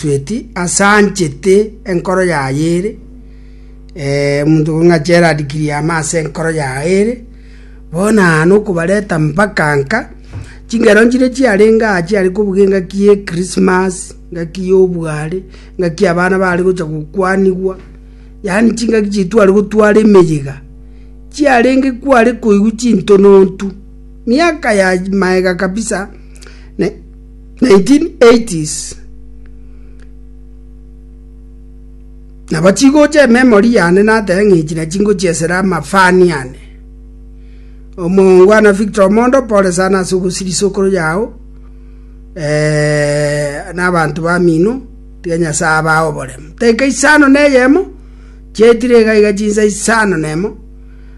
Tweti asanchete enkoro yaye ere, eh, omonto ng'a Gerald Kiriama ase enkoro yaye ere, bono aa nokobareta mpaka nka, chingero nchire chiarenge aa chiare kobuga engaki ye Christmas, engaki y'obware, engaki abana bare gocha gokwanigwa, yaani chingaki chitware gotwara emeyega, chiarenge kware koigwa chintonontu, miaka ya maega kabisa, ne. 1980s, Nabo chigocha ememory yane nateba ng'a echi na chingochi esere amafani ane. Omoongwana Victor Omondo pole sana ase ogosiria isokoro yao na abanto bamino tiga Nyasaye abae oboremu. Dakika isano na eyemo chiaetire iga iga chinsa isano na emo.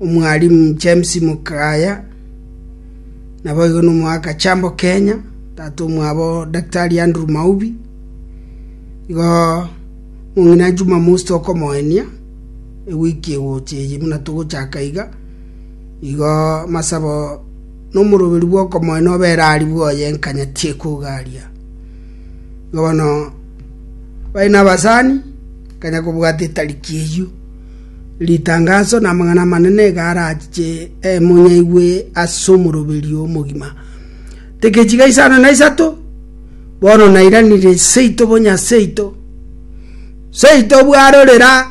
Omwalimu James Mukaya, naboigo nomoaka Chambo Kenya, tata omwabo Daktari Andrew Maubi, igo mong'ina Juma Musi tokomoenia ewiki egocha eye buna togochaka iga, igo masabo nomoroberi bw'okomoenia obere ari bwoye enkanya tiekogaria. Igo bono bari nabasani, kanya kobwata etariki eyio. Ritangaso namang'ana amanene iga arache monyaigwe ase omoroberio omogima. Tekechiga isano na isato, bono nairanire seito bonya seito, seito bwarorera,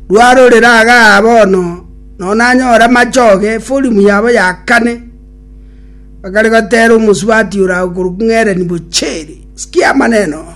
rwarorera igaa bono nonye nanyore amachoge efolimu yabo ya kane, bakare gotera omosubati ore agwo korwa king'erenigwe cheri. Sikia amaneno aya.